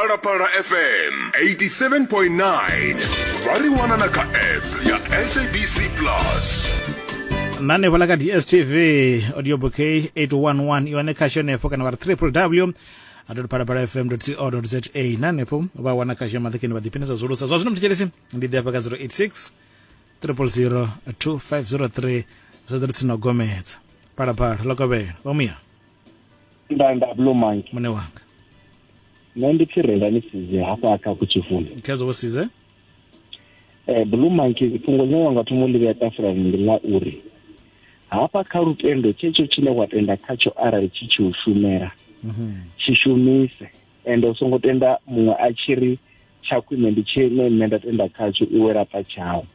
phalaphala fm 87.9 vha ri wana na kha app ya sabc plus nane vhala ka dstv audio bouquet 811 iwane khasho henefho kana vha ri www phalaphala fm co za na henefho vha wana khasho ya maḓakeni vha ḓiphinesa zwolusa zwa zwino mthetshelesi ndi ḓi hafha ka 086 000 2503 zwa ḓo ri tsini na u gomedza phalaphala ḽo kovhela vha muya nda nda blue monkey mune wanga nṋe ndi pfi renda ni size hafha kha kutshifuni khedzo vho size um eh, blue monkey fhungo ḽine wa nga thoma u ḽi vhea tafulani ndi ḽa uri hafha kha lutendo tshetsho tshine wa tenda khatsho arali tshi tshi u shumela mhm. tshi shumise ende u songo tenda muṅwe a tshi ri tsha khwine ndi tshine nṋe nda tenda khatsho iwe laṱa tshau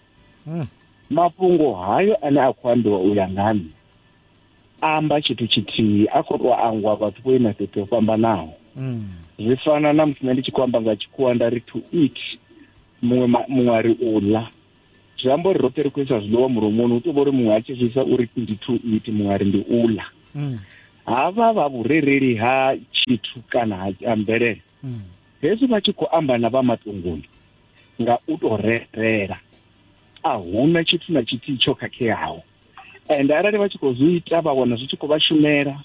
hmm. mafhungo hayo ane a khou ambiwa u ya nga nṋe amba tshithu tshithihi a khou tou angwa vhathu vho ima fhethu ho fhambanaho mm. zwi fana na musi nṋe ndi tshi khou amba nga tshikhuwa nda ri to eat muṅwe muṅwe a ri u ḽa zwi amba uri roṱhe ri khou isa zwiḽiwa mulomoni hu tou vha uri muṅwe a tshi zwi isa uri ndi to eat muṅwe a ri ndi u ḽa mm. havha vha vhurereli ha tshithu kana ha mvelele mm. hezwi vha tshi khou amba na vha matunguni nga u tou rerela a huna tshithu na tshithihi tsho khakheaho and arali vha tshi khou zwi ita vha wana zwi tshi khou vha shumela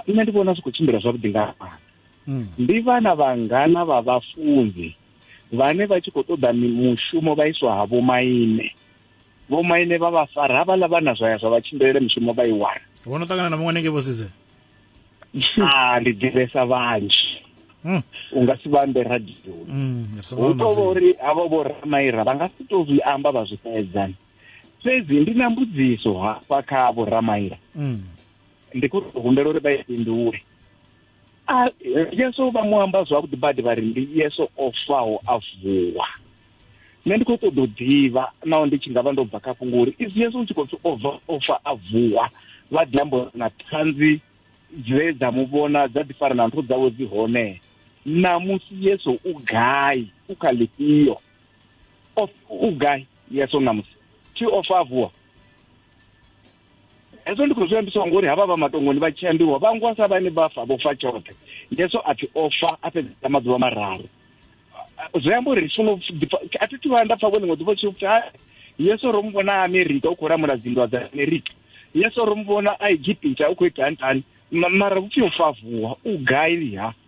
nṋe ndi vhona zwi khou tshimbila zwavhuḓi nga fhano hmm. ndi vhana vhangana vha vhafunzi vhane vha tshi khou ṱoḓa mushumo vha iswa ha vhomaine vhomaine vha vha fara havhaḽa vhana zwa ya zwa vha tshimbilele mushumo vha i wana vho no ṱangana na muṅwe nenge vho sidze a ndi ḓivhesa vhanzhi hmm. u nga si vhambe radioni hmm, hu tovha uri havho vho ramaira vha nga si to zwi amba vha zwi fhedzani fhedzi ndi na mbudziso hafha kha vho ramaila mm. ndi khou tou humbela uri vha i fhindule Ah, yesu vha mu amba zwavhuḓi badi vha ri ndi yesu o faho a vuwa nṋe ndi khou ṱoḓa u ḓivha naho ndi tshi nga vha ndo bva kha fhungo uri isi yesu u tshi khou pfi o bva o fa a vuwa vha ḓi amba uri na ṱhanzi dze dza mu vhona dza ḓi fara na nthu dzawe dzi hone namusi yesu u gai u kha ḽifhio of ugai yeso namusi ti ofavuwa hezwo ndi khou zwi ambiswa ngori havha vha matongoni vha tshi ambiwa vha ngwa sa vhane vha fa vho fa tshoṱhe yeso a pfi o fa a fhedzisa maḓuvha mararu zwi amba uri funa a thi thivha nda pfa vho ḽiṅwe ḓuvha tshi pfi yeso ro mu vhona a amerika u khou lamula dzinndwa dza amerika yeso ro mu vhona a egipita u khou ita ntani mara vhupfi u favuwa u gai ha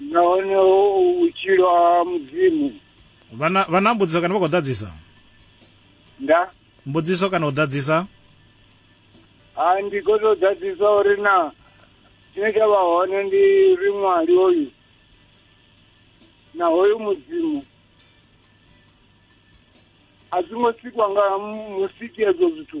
nahone vhutshilo ha mudzimu vhana vhana mbudziso kana vha khou ḓadzisa nda mbudziso kana u ḓadzisa ha ndi khou tou ḓadzisa uri na tshine tsha vha hone ndi ri ṅwali hoyu na hoyu mudzimu a zwi ngo sikwa nga musiki ezwo zwithu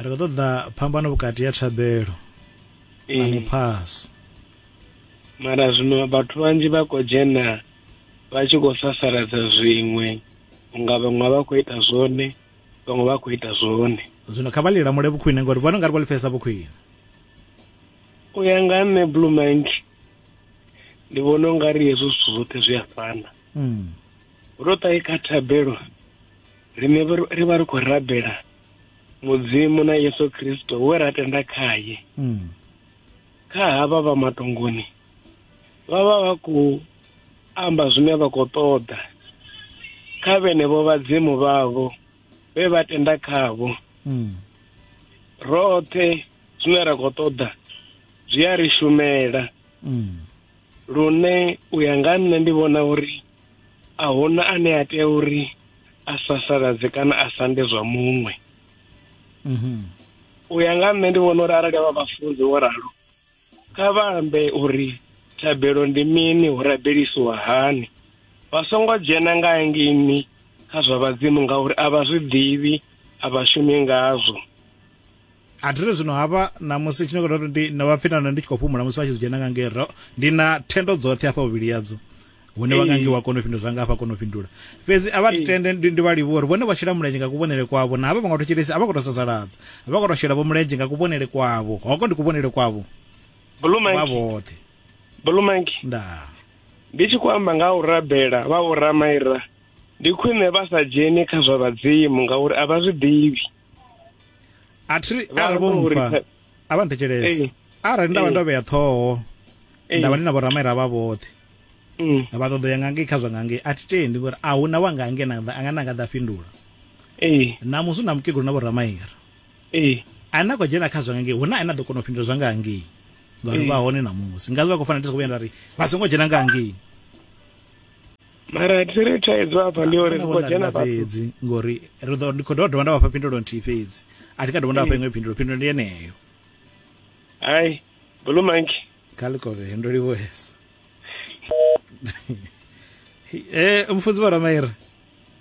ri khou ṱoḓa phambano vhukati ya thabelo na eh. muphaso mara zwino vhathu vhanzhi vha khou dzhena vha tshi khou sasaladza zwiṅwe unga vhaṅwe vha khou ita zwone vhaṅwe vha khou ita zwone zwino kha vha lilamule vhukhwine ngori vhone ungari vha lifhesa vhukhwine u ya nga nṋe blue mind ndi vhona u nga ri hezwo zwithu zwoṱhe zwi a fana hmm. ro ṱahe kha thabelo rine ri vha ri khou rabela mudzimu na yesu kristo we ra tenda khaye mm. kha havha vha matongoni vha vha vha khou amba zwine vha khou ṱoḓa kha vhenevho vhadzimu vhavho vhe vha tenda khavho mm. roṱhe zwine ra khou ṱoḓa zwi a ri shumela mm. lune u ya nga nṋe ndi vhona uri a huna ane a tea uri a sasaladze kana a sande zwa muṅwe mhm. u ya nga nṋe ndi vhona uri arali avha vhafunzi wo ralo kha vha ambe uri thabelo ndi mini hu rabelisiwa hani vha songo dzhena nga ngini kha zwa vhadzimu ngauri a vha zwi ḓivhi a vha shumi ngazwo a thiri zwino hafha namusi tshine kota ndi na vhapfinana ndi tshi khou fhumula musi vha tshi dzhena nga ngero ndi na thendo dzoṱhe hafha vhuvhili yadzo hune vha ngangi wa kona u fhindula zwanga hafha kona u fhindula fhedzi a vha tende ndi vha livhuwa uri vhone vha shela mulenzhe nga kuvhonele kwavho na havha vha nga to tshelesi a vha khou to sasaladza vha khou to shela vho mulenzhe nga kuvhonele kwavho hoko ndi kuvhonele kwavho vha vhoṱhe bulumanki nda ndi tshi khou amba nga u rabela vha vho ramaira ndi khwine vha sa dzheni kha zwa vhadzimu ngauri a vha zwi ḓivhi a thi ri arali vho mpfa a vha nthetshelese arali nda vha ndo vhea ṱhoho nda vha ndi na vhoramaira vha vhoṱhe mm. vha ṱoḓo ya ngangei kha zwa ngangei a thi tendi ngori a huna wa ngangei anga na nga ḓa fhindula namusi u na mukegulu na vhoramaira a na khou dzhena kha zwa ngangei huna ane a ḓo kona u fhindula zwa ngangei ngauri vha hone namusi ngazi vha khou fanela ndi sa khou vhuya nda ri vha songo dzhena ngangei mara thi ri thaidzo afha ndi uri ri khou dzhena fhedzi ngori ri ḓo ndi khou dovha dovha nda vhafha phindulo nthihi fhedzi a thi ka dovha nda vhafha iṅwe phindulo phindulo ndi yeneyo hai blue monkey kha likove ndo livhuesa e eh, mufunzi vha ramaira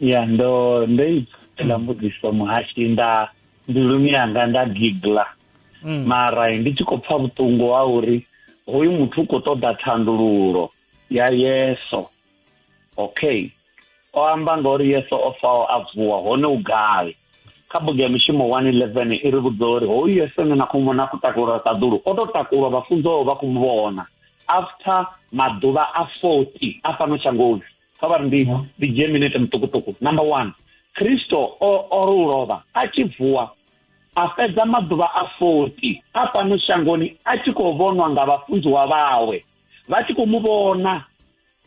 ya ndo ndo ipfela mbudziso muhashi nda mbiluni yanga nda gigla mm. mara ndi tshi khou pfa vhuṱungu ha uri hoyu muthu u khou ṱoḓa thandululo ya yeso okay o amba nga uri yeso o faho a vuwa hone u gai kha bugu ya mishumo 111 i ri vhudza uri hoyu yeso ne na khou vhona a khou takulwa ṱaḓulu o tou takulwa vhafunziwaho vha khou mu vhona after maḓuvha a 40 a fhano shangoni kha vha ri ndi ndi dzhie minete muṱukuṱuku number one kristo o o ri u lovha a tshi vuwa a fhedza maḓuvha a 40 a fhano shangoni a tshi khou vhonwa nga vhafunziwa vhawe vha tshi khou mu vhona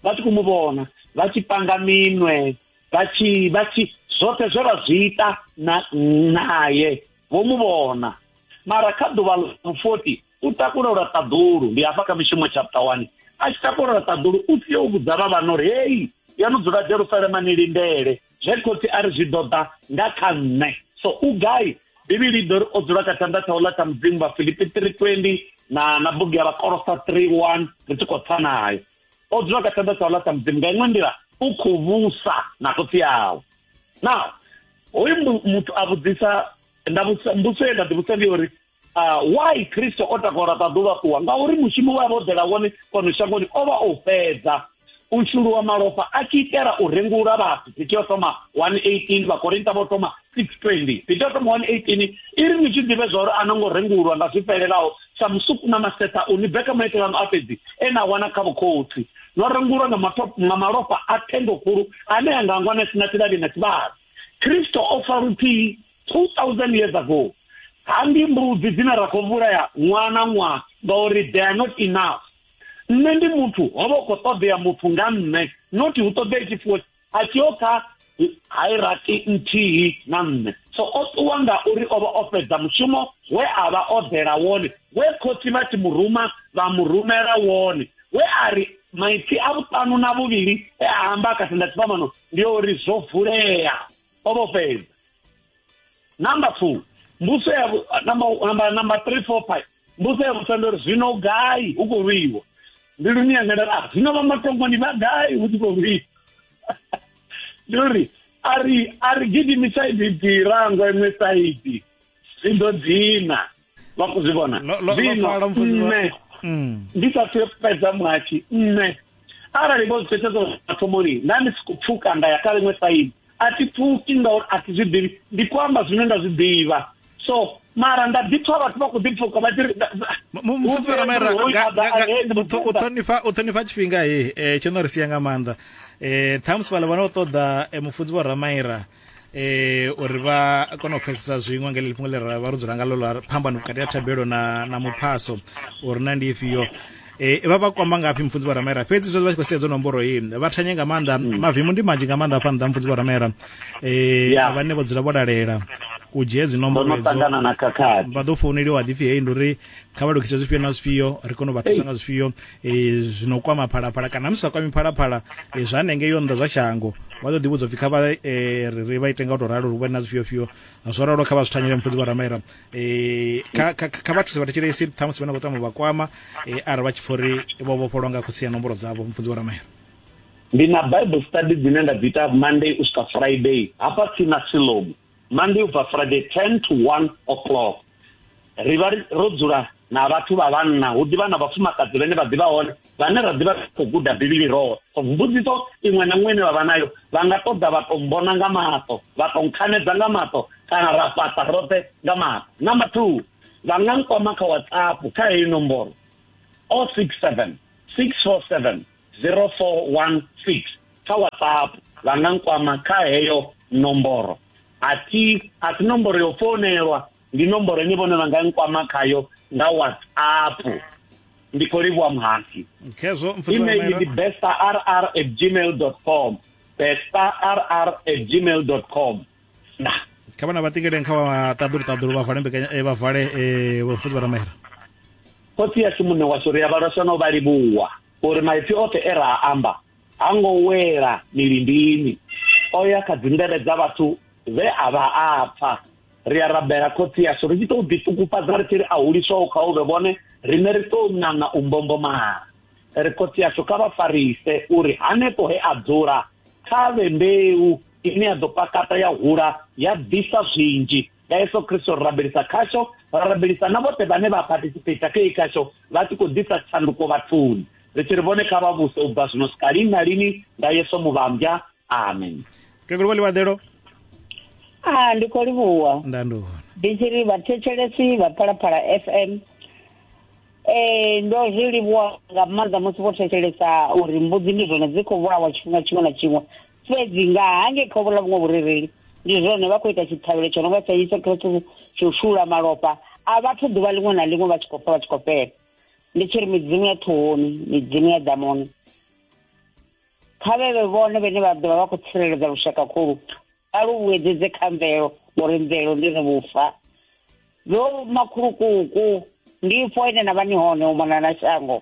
vha tshi khou mu vhona vha tshi panga minwe vha tshi vha tshi zwoṱhe zwe vha zwi ita na naye vho mu vhona mara kha ḓuvha ḽa 40 u takula lwa ṱaḓulu ndi hafha kha mishumo chapter 1 a tshi takula lwa ṱaḓulu u sia u vhudza vha vhana uri heyi ya no dzula jerusalema ni lindele zwe khotsi a ri zwi ḓo ḓa nga kha nṋe so u gai bivhili i ḓo ri o dzula kha tshanḓa tshaula tsha mudzimu vha filipi 320 na na bugu ya vhakolosa 31 ri tshi khou tsa nayo o dzula kha tshanḓa tshaula tsha mudzimu nga iṅwe nḓila u khou vhusa na khotsi yawe now hoyu muthu a vhudzisa nda vhusa mbuso ye nda ḓivhusa ndi uri Ah, why kristo o takora ṱaḓuvha ṱuwa ngauri mushumo wa vha o ḓela wone fhano shangoni o vha o fhedza u shuluwa malofha a tshi itela u rengula vhathu piti yo thoma 118 vhakorinta vho thoma 620 piti yo thoma 118 i ri ni tshi ḓivhe zwa uri a no ngo rengulwa nga zwi fhelelaho sa musuku na masetha u ni beka maitele ano a fhedzi e na wana kha vhukhotsi no rengulwa nga matop- nga malofha a thendo khulu ane a nga ngwa na sina tshivhali na tshivhali kristo o fa luthihi 2000 years ago ha ndi mbudzi dzine ra khou vhulaya ṅwaha na ṅwaha ngauri they are not enough nṋe ndi muthu ho vha u khou ṱoḓea muthu nga nṋe noti hu ṱoḓea tshifuwo a tshi yo kha hairaki nthihi na nṋe so o ṱuwa nga uri o vha o fhedza mushumo we a vha o ḓela wone we khotsi vha tshi muruma vha mu rumela wone we a ri maipfi a vhuṱanu na vhuvhili e a amba kha thendathivhamano ndi yo uri zwo vulea o vho fhedza number two mbuso ya number number three four five mbuso ya vhusa ndo ri zwino gai u khou lwiwa ndi luni yangelela ah, zwino vha matongoni vha gai hu tshi khou lwiwa ndi uri a ri a ri gidimisa ibi ḓirangwa iṅwe saidi zwi ḓo dzina vha khou zwi vhona zwino nṋe mm. ndi sa thu fhedza muhatshi nṋe arali vho zwi thetshedzo mathomoni nda ndi siko pfuka nda ya kha ḽiṅwe saidi a thi pfuki ngauri a thi zwi ḓivhi ndi khou amba zwine nda zwi ḓivha so mara nda ḓi pfa vhathu vha khou ḓi pfuka vha ṱhonifha u ṱhonifha tshifhinga he eh, tsho no ri sia nga maanḓa um ṱhamusi vhala vha no ṱoḓa eh, mufunzi vho ramaira eh uri vha kone u pfesesa zwiṅwe ngeli lifhungo ḽi ra vha ro dzula ngalo ḽa phambano vhukati ha thabelo na na muphaso uri na ndi ifhio eh vha vha kwamba ngafhi mfunzi vharamera fhedzi zwo vha tshi khou sedza nomboro hii vha thanye nga maanḓa mm. mavimu ndi manzhi nga maanḓa afha nḓa mfunzi vharamera eh yeah. vhane vho dzula vho lalela u dzhia dzi nomboro edzo vha ḓo founeliwa ḓipfi heyi ndi uri kha vha lukise zwifhio na zwifhio ri kone u vha thusa nga zwifhio e, zwino kwama phalaphala kana musi sa kwami phalaphala e, zwa nenge yo nnḓa zwa shango vha ḓo ḓivhudza upfi kha vha e, ri vha ite nga u tou ralo ri vhone na zwifhio fhio zwo ralo kha vha zwi thanyele mufudzi vharamaira e, kha, kha, kha vha thuse vha thetshelesi ṱhamusi vha na khou tama vha kwama e, arali vha tshi pfa uri vho vhofholwa nga khotsi ya nomboro dzavho mufudzi vharamaira ndi na bible study dzine nda dzi ita monday u swika friday hafha tsini na silomu monday ubva friday 10 to 1 o'clock ri vha ro dzula na vhathu vha vhanna hu ḓivha na vhafumakadzi vhene vha ḓivha hone vhane ra ḓivha khou guda bivhili roho so mbudziso iṅwe na iṅwe ine vha vha nayo vha nga ṱoḓa vha tou mbona nga maṱo vha tou nkhanedza nga maṱo kana ra fhaṱa roṱhe nga maṱo number two vha nga nkwama kha whatsapp kha heyi nomboro o six seven six four seven 0416 kha whatsapp vha nga nkwama kha heyo nomboro a thi a si nomboro yo founelwa ndi nomboro ine vhone vha nga nkwama khayo nga whatsapp ndi khou livhuwa muhasi email ndi bestarr at gmail dot com bestarr at gmail dot com na kha vhana vha ṱingeleni kha vha ṱaḓulu ṱaḓulu vha vale mbekanya eh, vha vale eh, vhafuzi vha ramera khotsi yashu muṋe washu ri a vhalwaswa na u vha livhuwa uri maipfi oṱhe e ra amba ha ngo wela milindini o ya kha dzindele dza vhathu vhe a vha a pfa ri a rabela khotsi yashu ri tshi tou ḓiṱukufhadza ri tshi ri a huliswaho kha uvhe vhone riṋe ri tou ṋaṋa u mbombomala ri khotsi yashu kha vha farise uri hanefho he a dzula kha vhe mbeu ine ya ḓo pakata ya hula ya ḓisa zwinzhi nga yesu kristo ri rabelisa khasho ra rabelisa na vhoṱhe vhane vha participata khe khasho vha tshi khou ḓisa tshanduko vhathuni ri tshi ri vhone kha vha vhuse u bva zwino swika lini na lini nga yesu muvhambya amen keguluwa ḽiwaḓelo a ah, ndi khou livhuwa ndanduhona ndi tshi ri vhathetshelesi vha phalaphala f m ee ndo zwi livhuwa nga maanḓa musi vho thetshelesa uri mbudzi ndi zwone dzi khou vhulawa tshifhinga tshiṅwe na tshiṅwe fhedzi nga hange kha vhuḽa vhuṅwe vhurereli ndi zwone vha khou ita tshiṱhavhelo tsho no nga tsha yesu khristu tsho shula malofha a vhathu ḓuvha ḽiṅwe na ḽiṅwe vha tshi khou fa vha tshi khou fhela ndi tshi ri midzimu ya ṱhohoni midzimu ya ḓamuni kha vhevhe vhone vhene vha ḓovha vha khou tsireledza lushaka khulu vha lu vhuedzedze kha mvelo ngori mvelo ndi ri vhufa vho makhulukuku ndi fo ine na vha ni hone u mona na shango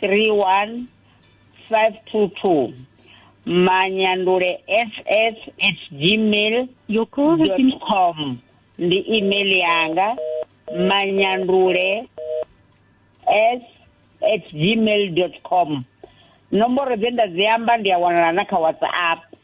31 522 manyandule ss at gmail Your call has been com ndi email yanga manyandule s at gmail dot com nomboro dze nda dzi amba ndi a wanala na kha whatsapp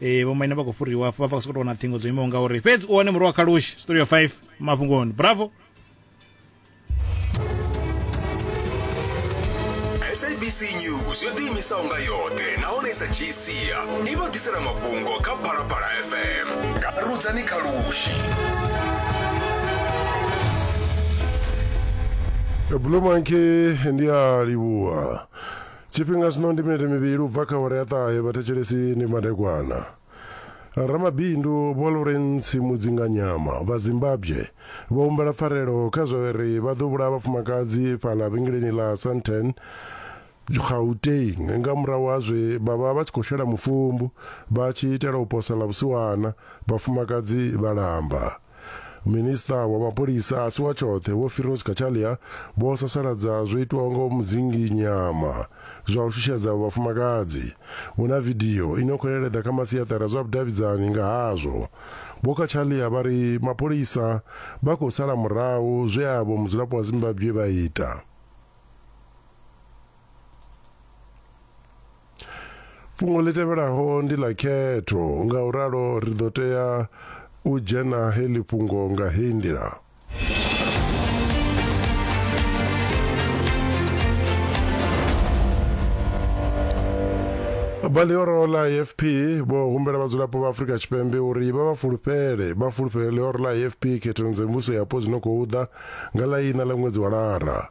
eh vho maina vha khou fhuriwa hafho vha vha sokou wana ṱhingo dzo imaho nga uri fhedzi u wane murwa wa khalushi story of 5 mafhungoni bravo sabc news yo ḓiimisaho nga yoṱhe nahone i sa dzhii sia i vha ḓisela mafhungo kha phalaphala fm nga rudzani khalushi Blue Monkey ndi a livhuwa Tshifhinga zwino ndi minete mivhili u bva kha awara ya ṱahe, vhathetshelesi ndi madekwana. Ramabindu Vho Lawrence Mudzinganyama vha Zimbabwe vho humbela pfarelo kha zwa uri vha ḓo vhulaha vhafumakadzi fhaḽa vhengeleni ḽa Sandton, Gauteng nga murahu ha zwe vha vha vha tshi khou shela mufumbu vha tshi itela u posa ḽa vhusiwana, vhafumakadzi vha lamba. minista wa mapholisa a si wa tshoṱhe vho firos kachalia vho sasaladza zwo itwaho nga mudzingi nyama zwa u shushedza vhafumakadzi vho na vidio ino khou leleḓa kha masiaṱari a zwa vhudavhidzani nga hazwo vho kachalia vha ri mapholisa vha khou sala murahu zwe avho mudzulapo wa zimbabwe vha ita Fhungo ḽi tevhelaho ndi ḽa khetho, ngauralo ri ḓo tea u dzhena heḽi fhungo nga heyi nḓila. Vha ḽihoro ḽa AFP vho humbela vhadzulapo vha Afrika Tshipembe uri vha vha fulufhele vha fulufhele ḽihoro ḽa AFP khethoni dza mivhuso yapo dzi no khou ḓa nga ḽa iṋa ḽa ṅwedzi wa Lara.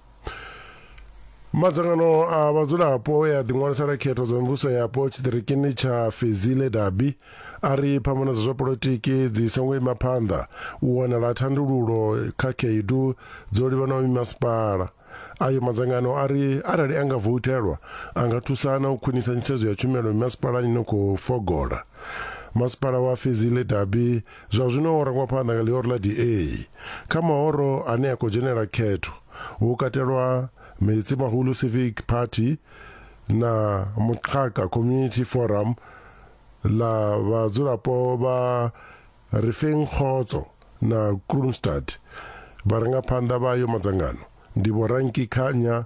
Madzangano a vhadzulapo e a ḓiṅwalisela khetho dza mivhuso yapo tshiṱirikini tsha Fezile Dabi a ri phambano dza zwa polotiki dzi songo ima phanḓa u wanala thandululo kha khaedu dzo livhanaho mimasipala. Ayo madzangano a ri arali a nga vouthelwa a nga thusa na u khwinisa nyisedzo ya tshumelo mimasipalani no khou fogola. Masipala wa Fezile Dabi Zwa zwino ho rangwa phanḓa nga ḽihoro ḽa DA. Kha mahoro ane a khou dzhenela khetho hu katelwa Metsimahulu Civic Party na Muxaka Community Forum ḽa vhadzulapo vha Refeng Kgotso na Kroonstad. Vharangaphanḓa vha ayo madzangano ndi Vho Ranki Khanya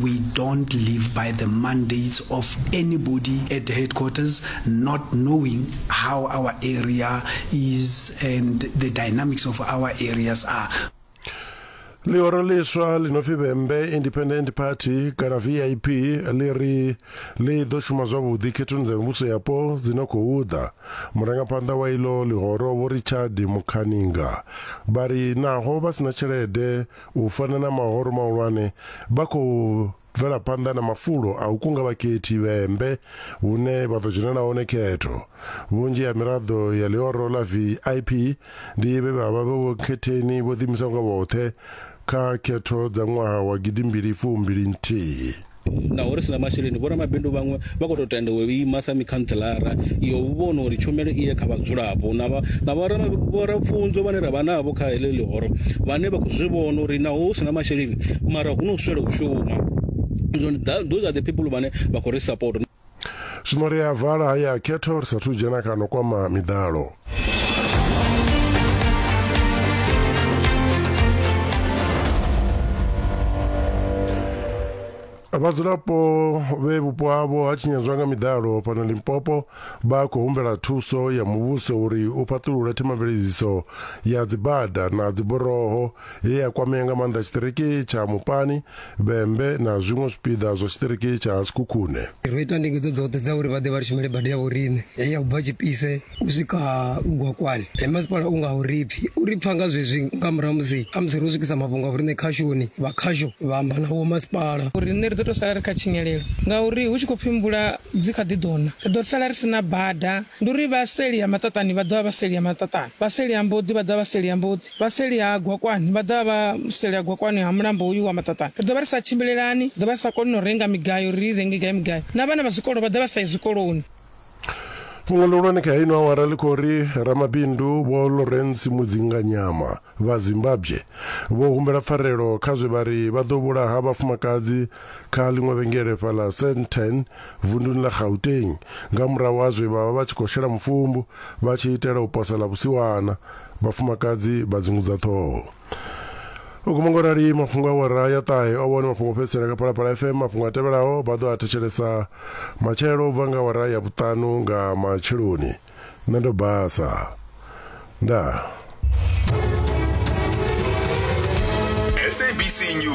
We don't live by the mandates of anybody at the headquarters, not knowing how our area is and the dynamics of our areas are. ḽihoro ḽiswa ḽi no pfi vhembe independent party kana vip ḽi ri ḽi ḓo shuma zwavhuḓi khethoni dza mivhuso yapo dzi no khou ḓa murangaphanḓa wa iḽo ḽihoro vho richard mukhaninga vha ri naho vha si na tshelede U fana na mahoro mahulwane, vha khou bvela phanḓa na mafulo a u kunga vhakhethi vhembe hune vha ḓo dzhenela hone khetho. Vhunzhi ha miraḓo ya ḽihoro ḽa VIP ndi vhe vha vha vhe vhonkhetheni vho ḓiimisaho nga vhoṱhe kha khetho dza ṅwaha wa gidimbili fumbili nthihi. naho ri si na masheleni, vhoramabindu vhaṅwe vha khou tou tenda u ima sa mikhantseḽara ya u vhona uri tshumelo i ye kha vhadzulapo na vha na vhorapfunzo vhane ra vha navho kha heḽi ḽihoro vhane vha khou zwi vhona uri naho hu si na masheleni mara hu no swela u shuma. Zwino those are the people vhane vha khou ri sapota. zwino ri a vala haya a khetho ri sathu dzhena kano kwama miḓalo vhadzulapo vhe vhupo havho ha tshinyadzwa nga miḓalo fhano limpopo vha khou humbela thuso ya muvhuso uri u fhaṱulule themamveledziso ya dzibada na dziboroho ye ya kwamea nga maanḓa tshiṱiriki tsha Mupani, Vhembe na zwiṅwe zwipiḓa zwa tshiṱiriki tsha Sekhukhune. Ro ita ndingedzo dzoṱhe dza uri vha ḓe vha ri shumele bada ya vhoriṋe ye ya bva Tshipise u swika Gwakwani. He masipala u nga u ri pfi u ri pfa nga zwezwi nga murahu musi khamusi ro swikisa mafhungo a vhoriṋe khashoni, vha khasho vha amba na vhomasipala. Riṋe ri ḓo tou sala ri kha tshinyalelo ngauri hu tshi khou pfi mvula dzi kha ḓi ḓo na, ri ḓo sala ri si na bada. Ndi uri vha seli ha maṱaṱani vha ḓo vha vha seli ha maṱaṱani, vha seli ha mboḓi vha ḓo vha vha seli ha mboḓi. Vha seli ha Gwakwani vha ḓo vha vha seli ha Gwakwani ha mulambo hoyu wa Maṱaṱani. Ri ḓo vha ri sa tshimbilelani, ri ḓo vha ri sa koni na u renga migayo uri ri i renge gai migayo, na vhana vha zwikolo vha ḓo vha sa yi zwikoloni. Fhungo ḽihulwane kha ino awara ḽi khou ri ramabindu Vho Lawrence Mudzinganyama vha Zimbabwe vho humbela pfarelo kha zwe vha ri vha ḓo vhulaha vhafumakadzi kha ḽiṅwe vhengele fhaḽa Sandton vunduni ḽa Gauteng nga murahu ha zwe vha vha vha tshi khou shela mufumbu vha tshi itela u posa ḽa vhusiwana Vhafumakadzi vha dzungudza ṱhoho. U guma ngo rali mafhungo a wara ya ṱahe o vhone mafhungo fhedzisela kha Phalaphala FM. Mafhungo a tevhelaho vha ḓo a thetshelesa matshelo u bva nga wara ya vhuṱanu nga matsheloni. Nṋe ndo basa. Ndaa. SABC News.